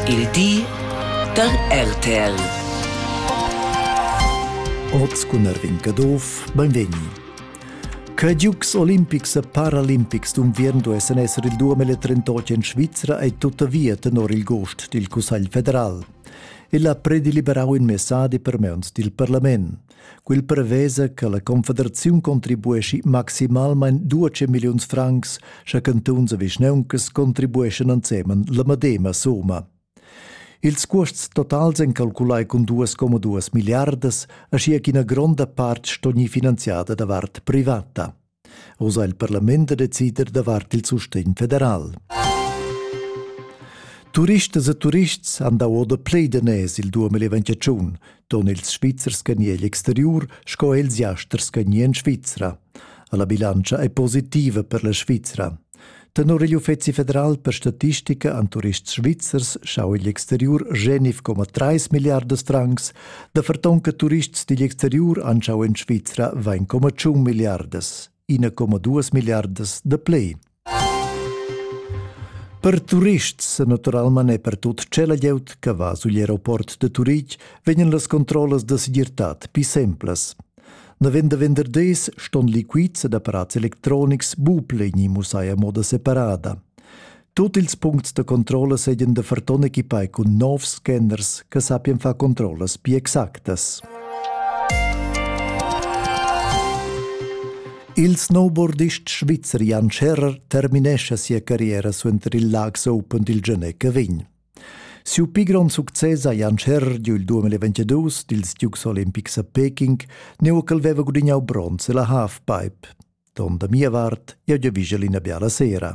Il di da RTL. Oz cun Erwin Caduff, benvegni. Che Giugs olimpics e paralimpics d'unviern duessen esser il 2038 en Svizra ei tuttavia tenor il gost dil Cussegl federal. El ha predeliberau in messadi per meuns dil parlament. Quel prevesa che la Confederaziun contribueschi maximalmain 12 milliuns francs, sche cantuns e vischneuncas contribueschan ensemen la medema summa. Ils cuosts totals ein calculai cun 2,2 milliardas, aschia ch'ina gronda part sto gnir finanziada davart privata. Uss ha il parlament da decider davart il sustegn federal. Turistas e turists han dà oda plei daners il 2021, ton ils Svizzers che egl exteriur sco els jasters che en Svizra. La bilantscha è positiva per la Svizra. Tenor igl Uffeci federal per statistica an turists svizzers schau igl exteriur genif coma 3 milliardas francs, da fertonca turists digl exteriur anschau en Svizra vain coma 1 milliardas, 1,2 milliardas de plei. Per turists, naturalment e per tut cela glieud che va sugl aeroport de Turitg, vegnan las controllas de segirtad pi semplas. Navend da venderders ston liquids ed apparats electronics bupleni mussai a moda separada. Tut ils puncts da controlla seigien da ferton equipai cun novs scanners che sappien far controllas più exactas. Il snowboardist svizzer Jan Scherrer terminesce sia carriera suenter il Laax Open dil Genec Vin. Siu pli grond success ha Jan Scherr giu il 2022 dils Dukes olimpics a Peking, neu ch'el veva gudignau bronz ella halfpipe. Ton da mia vart, jeu giavischel ina biala sera.